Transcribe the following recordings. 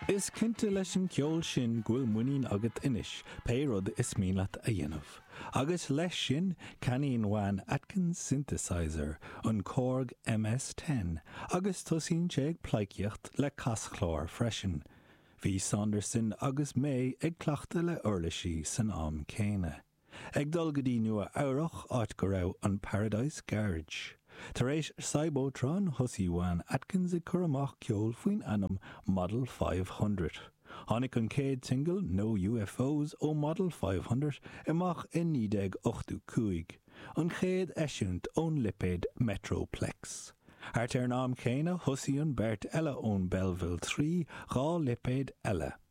Is cinnte leis an gceol sin go bhfuil muinín agat anois pé rud is mian leat a dhéanamh. Agus leis sin, ceannaíonn Juan Atkins synthesizer, an Korg MS-10, agus tosaíonn sé ag pleidhcíocht le caschlár freisin. Bhí Saunderson agus May ag cleachtadh le uirlisí san am céanna. Ag dul go dtí Nua Eabhrach, áit go raibh an Paradise Garage. Tar éis Cybotron, thosaigh Juan Atkins ag cur amach ceol faoin ainm Model Five Hundred. Tháinig an chéad singil, No UFOs, ó Model Five Hundred amach i 1985, an chéad eisiúint ón lipéad Metroplex. Thart ar an am céanna, thosaigh an beirt eile ón Belleville Three dhá lipéad eile.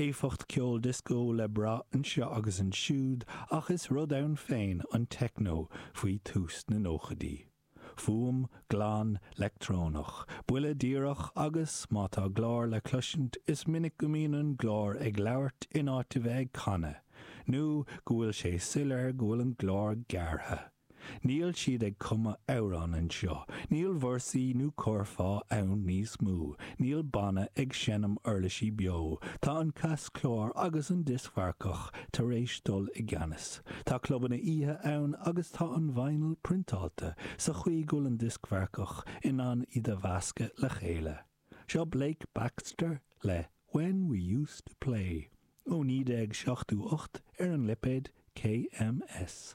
éifeacht ceoil dioscó le brath anseo agus ansiúd ach is rud ann féin an techno faoi thús na nóchaidí. Fuaim glan leictreonach, buille díreach agus, má tá glór le cloisint, is minic go mbíonn an glór ag labhairt in áit a bheith ag canadh, nó go bhfuil sé soiléir go bhfuil an glór gearrtha. Níl siad ag cumadh amhrán anseo, níl véarsaí nó curfá ann níos mó, níl banna ag seinm uirlisí beo, tá an caschlár agus an dioscmharcach tar éis dul i gceannas. Tá clubanna oíche ann agus tá an vinyl priontáilte sa chaoi go bhfuil an dioscmharcach in ann iad a mheascadh le chéile. Seo Blake Baxter le When We Used To Play ó 1978 ar an lipéad KMS.